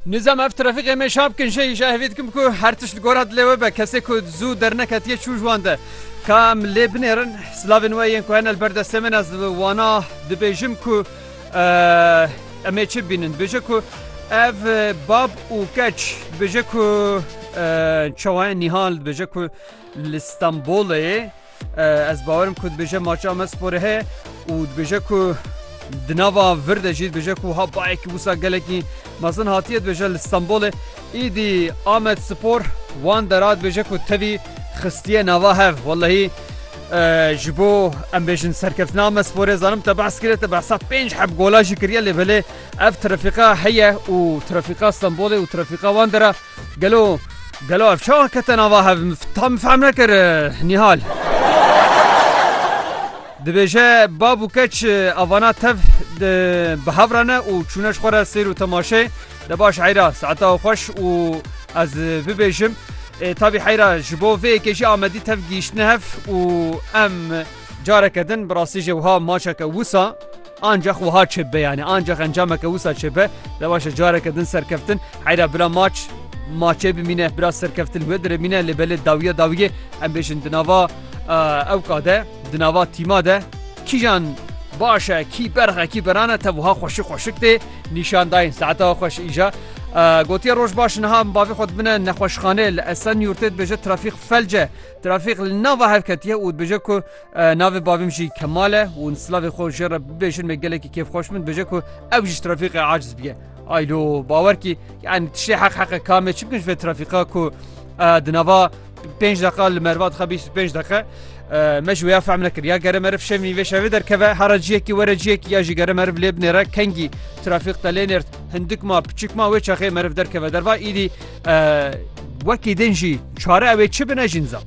Nizam ev trafîkê me şap kin jeyî ji hevî dikim ku her tişt li gora dilê we be kesê ku zû derneketiye çû ji wan de ka em lê binêrin silavên we yên ku hene li ber destê min ez li wana dibêjim ku em ê çi bînin bêje ku ev bab û keç bêje ku çawayen nîhan dibêje ku li Stenbolê Ez bawerim ku dibêje maça me sporê heye û dibêje ku di nava vir de jî dibêje ku ha bayekî wisa gelekî mezin hatiye dibêje li Stenbolê îdî Amed Spor wan dera dibêje ku tevî xistiye nava hev welehî ji bo em bêjin serkeftina me sporê zanim te behs kiriye te behsa pênc heb gola jî kiriye lê belê ev trafîqa heye û trafîqa Stenbolê û trafîqa wan dera Gelo gelo ev çawa kete nava hev ta min fehm nekir Nîhal. Dibêje bab û keç avana tev bi hev re ne û çûne ji xwe re sêr û temaşe de baş heyra saeta xweş û ez bibêjim tabî heyra ji bo vê yekê jî Amedî tev gihîştine hev û em careke din bi rastî jê wiha maçeke wisa Ancax wiha çêbibe yanî ancax encameke wisa çêbibe de waşe careke din serkeftin heyra bila maç maçê bimîne bila serkeftin wê diremîne lê belê dawiye dawiyê em bêjin di nava ewka de di nava tîma de kîjan baş e kî berx e kî berane te wiha xweşik xweşik tê nîşan dayên saeta xweş îja gotiye roj baş niha bavê xwe dibine nexweşxanê li esen yurtê dibêje trafîk felce trafîk li nava hevketiye û dibêje ku Navê bavîm jî Kemal e û silavê xwe jê re bibêjin me gelekî kêf xweş min bêje ku ew jî trafîqê aciz bike. Aylo bawer kî yani tiştê heq heqe kamê çi bikin ji vê trafîqa ku di nava pênc deqa li merva dixe bîst û pênc deqe me ji wê ya fehm nekir ya gere meriv şevî vê şevê derkeve hera ciyekî were ciyekî ya jî gere meriv lê binêre kengî trafîq te lê nêrt hindik ma piçik ma wê çaxê meriv derkeve derva îdî wekî din jî çare ew ê çi bine jî nizam.